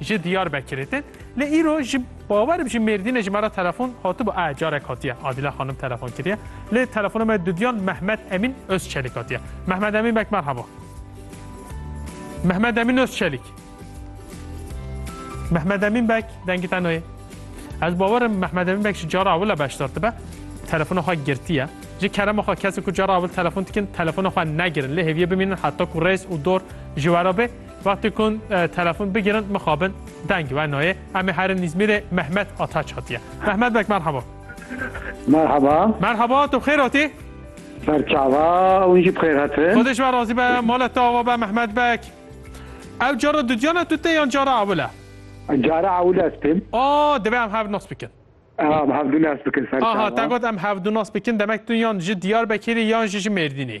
ji Diyarbekirê te lê îro ji bawer bi ji Mêrdînê ji me re telefon hatibû e carek hatiye Adîla xanim telefon kiriye lê telefona me dudiyan Mehmet Emîn Özçelîk hatiye Mehmet Emîn bek merhaba Mehmet Emîn Özçelîk Mehmet Emîn bek dengî te nayê Ez bawerim Mehmet Emîn bek ji cara ewile beşdar dibe telefona xwe girtiye ji kerema xwe kesê ku cara ewil telefon dikin telefona xwe negirin lê hêviye bimînin heta ku rêz û dor ji we re bê Wextê ku telefon bigirin mixabin deng wenoyê. Em ê herin Îzmîrê Mehmet Ataç hatiye. Mehmet bek merhaba. Merhaba. Merhaba tu xêr hatî? Berçava hûn jî bixêr hatin. Xwedê ji we razî be, mala te ava be Mehmet bek. Ew cara dudiyana tu te yan cara ewil e? Cara ewil ez têm. A divê em hev nas bikin. Em hevdû nas bikin serçava. Aha te got em hevdû nas bikin demek tu yan ji Diyarbekirî yan jî ji Mêrdînê.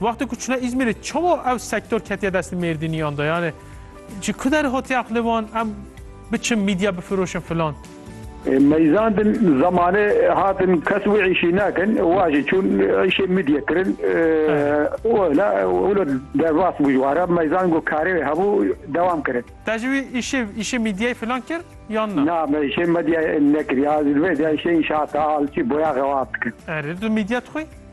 Wextê ku çûne Îzmîrê çawa ew sektor ketiye destê Mêrdîniyan de yani ji ku der hatiye aqilê wan em biçin mîdya bifiroşin filan. Meyzandin zamanê hatin kes wî îşî nakin wa jî çûn îşê mîdya kirin wila wilo derbas bû ji wara meyzan ku karê wê hebû dewam kirin. Te jî wî îşê îşê mîdyayê filan kir yan na? Na me îşê medyayê nekiriye ez li vê de îşê înşaata alçî boya xewaf dikim. Erê tu mîdya dixwî?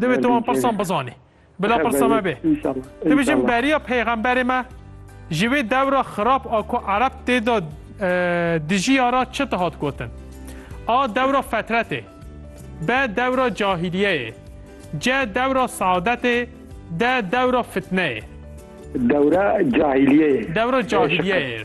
Divê tu wan pirsan bizanî. Bila pirsa me bê. Tu bijin beriya peyxemberê me ji wê dewra xirab a ku Ereb tê de dijiya ra çi dihat gotin? A dewra fetretê. B dewra cahîliyeyê. C dewra seadetê. D dewra fitneyê. Dewra cahîliyeyê. Dewra cahîliyeyê.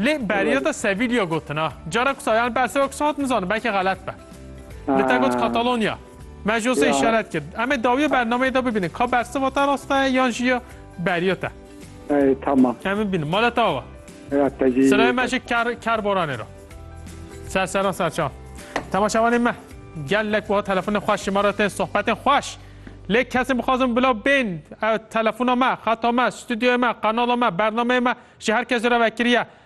Lê beriya te Sevilya gotin a. Cara ku sayan berseva ku hat nizanim belkî xelet be. Li te got Katalonya. Me ji osê işaret kir. Em ê dawiya bernameyê de bibînin ka berseva te rast e yan jî ya beriya te. Ey tamam. Em bibînin. Mala te ava. Ya te jî. Sirayê me ji kar karboranê re. Ser seran serçan. Temaşevanên me. Gelek wiha telefonên xweş ji me re tên sohbetên xweş. Lê kesên bixwazin bila bên telefona me, xeta me, stûdyoya me, qanala me, bernameyê me ji her kesê re vekiriye.